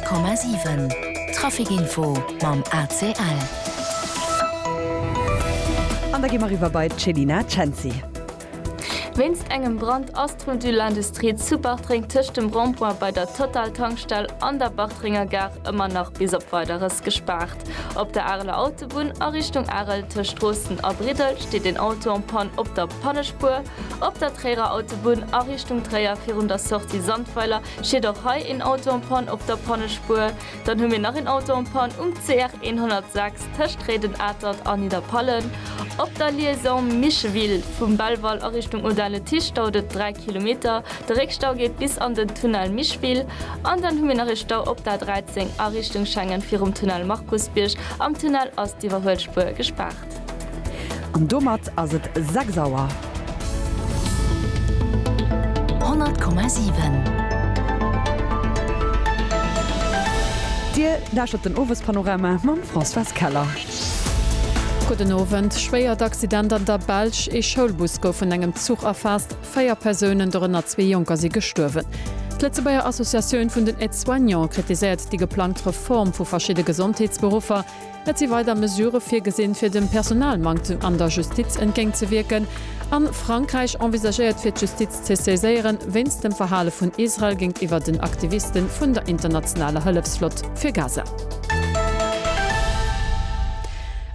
100,7 Trafic Info mam ACL. An da gi mer eriwwer bei d'Chelina Cenci. Wéinst engem Brand ass d'Rue de l'Industrie zu Bartreng tëscht dem Rond-point bei der Total-Tankstell an der Bartrenger Gare ëmmer nach bis op Weideres gespaart. Op der Areler Autobunn a Richtung Arel tëscht Droosten a Briddel steet een Auto en Panne op der Pannespuer. Op der Tréierer Autobunn a Richtung Tréier virun der Sortie Sandweiler steet och hei een Auto en Panne op der Pannespuer. Dann hu mir nach een Auto en Panne um CR 106 tëscht Réiden-Atert a Nidderpallen. Op der Liaison Micheville vum Belval a Richtung Audun-le-Tiche dauert et 3 Kilometer De Réckstau geet bis an den Tunnel Mischwil an dann hu mir nach ee Stau op der A 13 a Richtung Schengen virum Tunnel Markusbierg. Am Tunnel ass d'Iwwerhuelspuer gespaart. An domat ass et 6 Auer. 100,7. Dir lauschtert den Owespanorama mam Françoise Keller. Gudden Owend, Schwéiert Accident an der Belsch, ee Schoulbus gouf vun engem Zuch erfaasst. Véier Persounen, dorënner zwee Jonker, si gestuerwen. D'Lëtzebuerger Associatioun vun den Aide-soignants kritiséiert déi geplangt Reform vu verschidde Gesondheetsberuffer. Et si weider Mesurë virgesinn, fir dem Personalmanktem an der Justiz entgéintzewierken. A Frankräich envisagéiert fir d'Justiz ze saiséieren, wéinst dem Verhale vun Israel géintiwwer den Aktiviste vun der internationaler Hëllefsflott fir Gaza.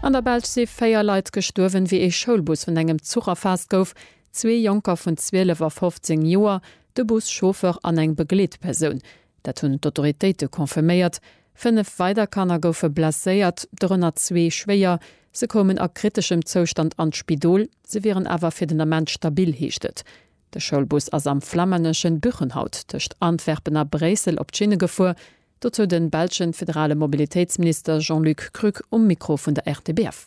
An der Belsch si véier Leit gestuerwen, wéi ee Schoulbus vun engem Zuch erfaasst gouf. Zwee Jonker vun 12 a 15 Joer, de Bus-Chauffeur an eng Begleetpersoun, dat hunn d'Autoritéite confirméiert. Fënnef weider Kanner goufe blesséiert, dorënner zwee schwéier. Se koumen a kriteschem Zoustand an d'Spidol, se wieren awer fir den Ament stabil, heescht et. De Schoulbus ass am flamänneschen Buchenhout tëscht Antwerpen a Bréissel op d'Schinne gefuer. Dozou de belschen federale Mobilitéitsminister Jean-Luc Krück um Mikro vun der RTBF.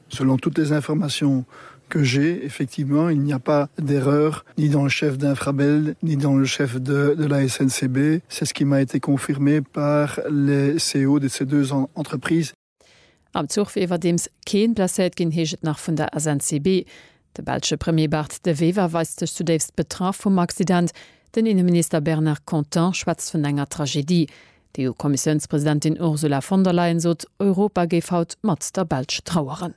Selon toutes les informations que j'ai, effectivement, il n'y a pas d'erreur ni dans le chef d'Infrabel ni dans le chef de de la SNCB. C'est ce qui m'a été confirmé par les CEO de ces deux entreprises. Am Zuch wier iwwerdeems keen blesséiert ginn, heescht et nach vun der SNCB. De belsche Premier Bart De Wever weist sech zudéifst betraff vum Accident. Den Inneminister Bernard Content schwätzt vun enger Tragedie. D'EU-Kommissiounspresidentin Ursula von der Leyen sot, Europa géif haut mat der Belsch traueren.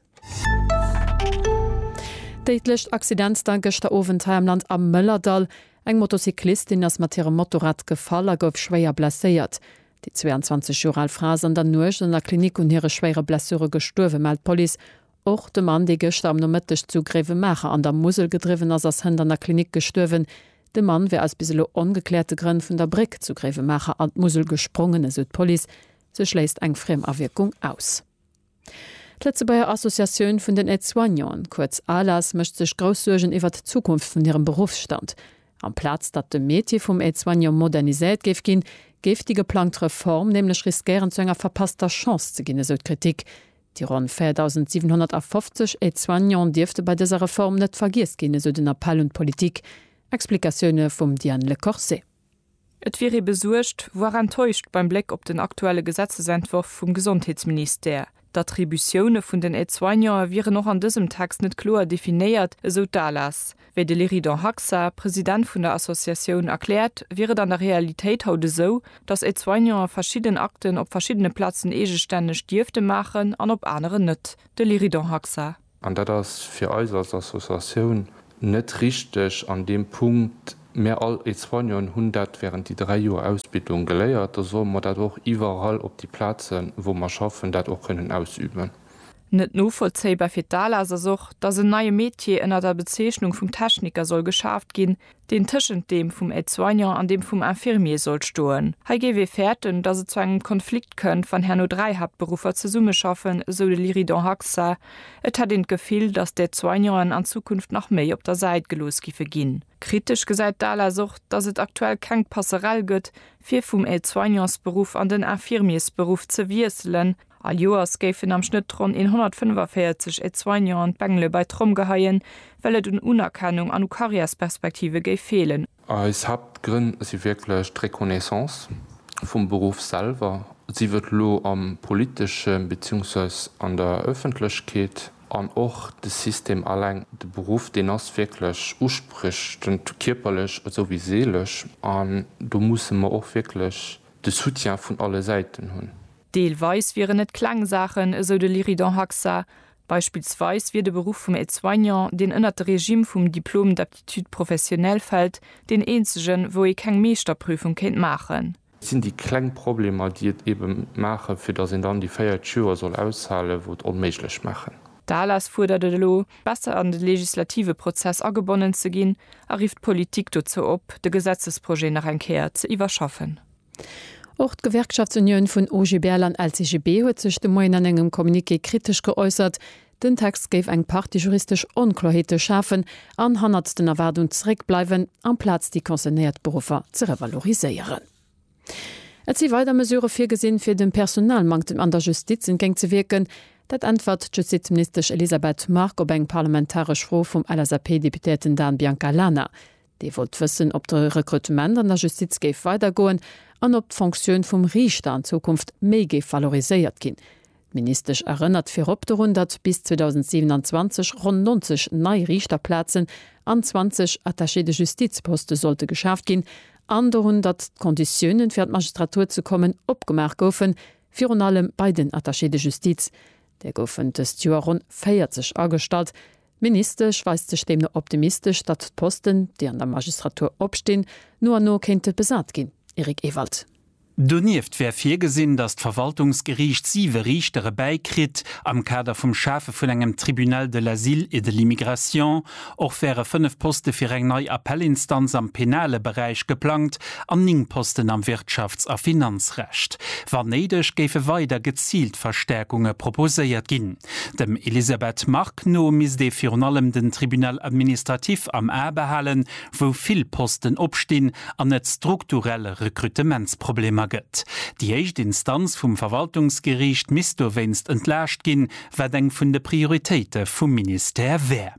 Déidlecht Accident da gëschter Owend hei am Land am Mëllerdall. Eng Motocyclistin ass mat hirem Motorrad gefall a gouf schwéier blesséiert. Déi 22 Joer al Fra ass an der Nuecht an der Klinik un hire schwéiere Blessure gestuerwen, mellt d'Police. Och de Mann, dee gëschter am Nomëtteg zu Gréiwemaacher an der Musel gedriwwen ass, ass hënt an der Klinik gestuerwen. De Mann wär aus bis elo ongekläerte Grënn vun der Bréck zu Gréiwemaacher an d'Musel gesprongen, esou d'Police. Se schléisst eng Friemawierkung aus. D'Lëtzebuerger Associatioun vun den Aide-soignanten, kuerz ALAS, mécht sech grouss Suergen iwwer d'Zukunft vun hirem Beruffsstand. Amplaz datt de Métier vum Aide-soignant moderniséiert géif ginn, géif déi geplangt Reform nämlech riskéieren, zu enger verpasster Chance ze ginn, esou d'Kritik. Déi ronn 4.750 Aide-soignant dierfte bei dëser Reform net vergiess ginn, esou den Appell un d'Politik. Explikatioune vum Diane Le Corset. Et wier ee besuergt, voire enttäuscht beim Bléck op den aktuelle Gesetzesentworf vum Gesondheetsministère. D'Attributioune vun den Aide-soignante wieren och an dësem Text net kloer definéiert, esou d'ALAS. Wéi de Leridan Haxa, President vun der Associatioun, erkläert, wier et an der Realitéit haut esou, datt Aide-soignante verschidden Akten op verschiddene Plazen eegestänneg dierfte maachen an op aneren net. De Leridan Haxa. An dat ass fir eis als Associatioun net richteg an deem Punkt. Mir all Aide-soignanten hunn dat während déi dräi Joer Ausbildung geléiert. Da solle mer dat och iwwerall op déi Plazen, wou mer schaffen, dat och kënnen ausüben. Net novollzéibar fir d'ALAS ass och, datt en neie Metier ënner der Bezeechnung vum Techniker soll geschaaft ginn, deen tëschent deem vum Aide-soignant an deem vum Infirmier soll stoen. Hei géif ee fäerten, datt et zu engem Konflikt kënnt, wann herno dräi Haaptberuffer zesummeschaffen, esou de Lyridon Haxa. Et hätt een d'Gefill, datt d'Aide-soignanten an Zukunft nach méi op der Säit gelooss giffe ginn. Kritesch gesäit d'ALAS och, datt et aktuell keng Passerell gëtt, fir vum Aide-soignansberuff an den Infirmiersberuff ze wiesselen, All Joers géifen am Schnëtt ronn 145 Aide-soignanten d'Bengele bei d'Tromm geheien, well et un Unerkennung an u Karriärsperspektive géif feelen. Eis Haaptgrënn si wierklech d'Reconnaissance vum Beruff selwer, sief et elo am politeschen, beziehungsweis an der Ëffentlechkeet, an och de System alleng. De Beruff, deen ass wierklech uspriechend, kierperlech esou wéi seelesch, an do musse mer och wierklech de Soutien vun alle Säiten hunn. Deelweis wieren et kleng Saachen, esou de Lyridon Haxa. Beispillsweis wier de Beruff vum Aide-soignant, deen ënnert de Regime vum Diplôme d'aptitude professionnelle fält, deen eenzegen, wou ee keng Meeschterprüfung kéint maachen. Et sinn déi kleng Problemer, déi et eebe maachen, fir datt een dann déi 40 Joer soll aushalen, wou et onméiglech maachen. D'ALAS fuerdert et elo, besser an de legislative Prozess agebonnen ze ginn a rifft d'Politik dozou op, de Gesetzesprojet nach eng Kéier ze iwwerschaffen. Och d'Gewerkschaftsunioun vun OGBL an LCGB huet sech de Moien an engem Communiqué kritesch geäussert. Den Text géif eng Partie juristesch Onkloerheete schafen an hannert den Erwaardung zeréckbleiwen, amplaz déi concernéiert Beruffer ze revaloriséieren. Et si weider Mesurë virgesinn, fir dem Personalmanktem an der Justiz entgéint ze wierken. Dat äntwert d'Justizministesch Elisabeth Margue op eng parlamentaresch Fro vum LSAP-Deputéierten Dan Biancalana. Dee wollt wëssen, ob de Rekrutement an der Justiz géif weidergoen an ob d'Fonctioun vum Riichter an Zukunft méi géif valoriséiert ginn. D'Ministesch erënnert virop dorun, datt bis 2027 ronn 90 nei Riichterplazen an 20 Attachés de justice-Poste sollte geschaaft ginn an dorun, datt d'Konditiounen, fir an d'Magistratur ze kommen, opgemaach goufen, virun allem bei den Attachés de justice. Der goufen dëst Joer ronn 40 agestallt. D'Ministesch weist sech deemno optimistesch, datt d'Posten, déi an der Magistratur opstinn, no an no kéinte besat ginn. Eric Ewald. Donieft wär virgesinn, datt d'Verwaltungsgeriicht siwe Riichtere bäi kritt. Am Kader vum Schafe vun engem Tribunal de l'asile et de l'immigration och wäre fënnef Poste fir eng nei Appellinstanz am penale Beräich geplangt an ning Posten am Wirtschafts a Finanzrecht. Wann néideg géife weider geziilt Verstärkunge proposéiert ginn. Dem Elisabeth Margue no misst ee virun allem den Tribunal administratif am A behalen, wou vill Posten opstinn an et strukturell Rekrutementsproblemer gëtt. Déi éischt Instanz vum Verwaltungsgeriicht misst dowéinst entlaascht ginn, wat eng vun de Prioritéite vum Ministère wär.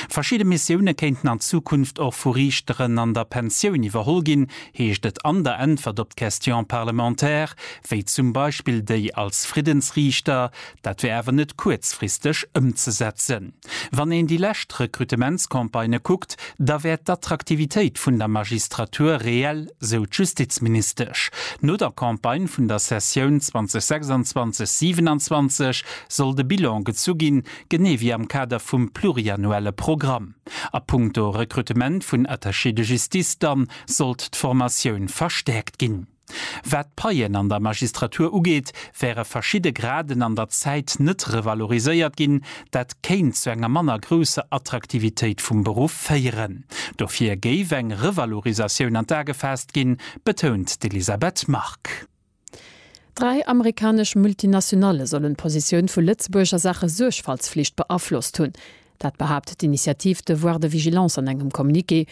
Verschidde Missioune kéinten an Zukunft och vu Riichteren an der Pensioun iwwerholl ginn, heescht et an der Äntwert op d'Question parlementaire, wéi zum Beispill déi als Friddensriichter. Dat wär awer net kuerzfristeg ëmzesetzen. Wann een déi lescht Rekrutementscampagnë kuckt, da wär d'Attraktivitéit vun der Magistratur reell, sou d'Justizministesch. No der Campagne vun der Sessioun 2026, 27 soll de Bilan gezu ginn, genee wéi am Kader vum pluriannuelle Programm. A punkto Rekrutement vun Attachés de justice dann sollt d'Formatioun verstäerkt ginn. Wat d'Paien an der Magistratur ugeet, wäre verschidde Graden an der Zäit net revaloriséiert ginn. Dat kéint zu enger manner grousser Attraktivitéit vum Beruff féieren. Dofir géif eng Revalorisatioun an d'A gefaasst ginn, betount d'Elisabeth Margue. Dräi amerikanesch Multinationale sollen d'Positioun vu Lëtzebuerg a Saache Suergfaltsflicht beaflosst hunn. Dat behaapt d'Initiative Devoir de vigilance an engem Communiqué.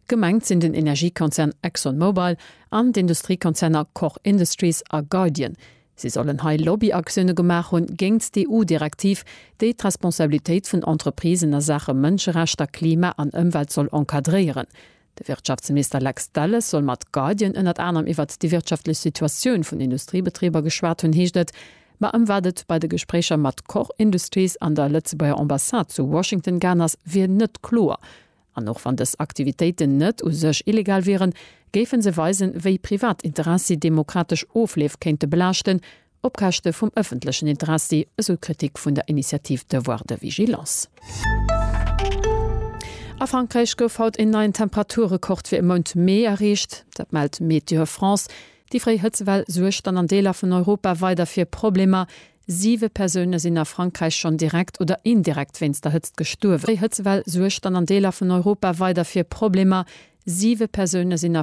Gemengt sinn den Energiekonzern ExxonMobil an d'Industriekonzerner Koch Industries a Guardian. Si sollen hei Lobbyaktioune gemaach hunn géingt d'EU-Direktiv, déi d'Responsabilitéit vun Entreprisen a Saache Mënscherechter, Klima an Ëmwelt soll encadréieren. De Wirtschaftsminister Lex Delles soll mat Guardian ënnert anerem iwwert déi wirtschaftlech Situatioun vun Industriebetriber geschwat hunn, heescht et. Ma ëm wat et bei de Gespréicher mat Koch Industries an der Lëtzebuerger Ambassade zu Washington gaangen ass, wier net kloer. An och wann dës Aktivitéiten net u sech illegal wieren, géife se weisen, wéi privat Interessi demokratesch Ofleef kéinte belaaschten, Op Käschte vum ëffentlechen Interessi, esou d'Kritik vun der Initiative Devoir de vigilance. A Frankräich gouf haut een neien Temperaturrekord fir e Mount Mee erreecht. Dat mellt Météo France. Déi fréi Hëtzewell suergt dann an Deeler vun Europa weider fir Problemer. Siwe Persoune sinn a Frankräich schonn direkt oder indirekt wéinst der Hëtzt gestuerwen. Déi fréi Hëtzewell suergt dann an Deeler vun Europa weider fir Problemer. Siwe Persoune sinn a.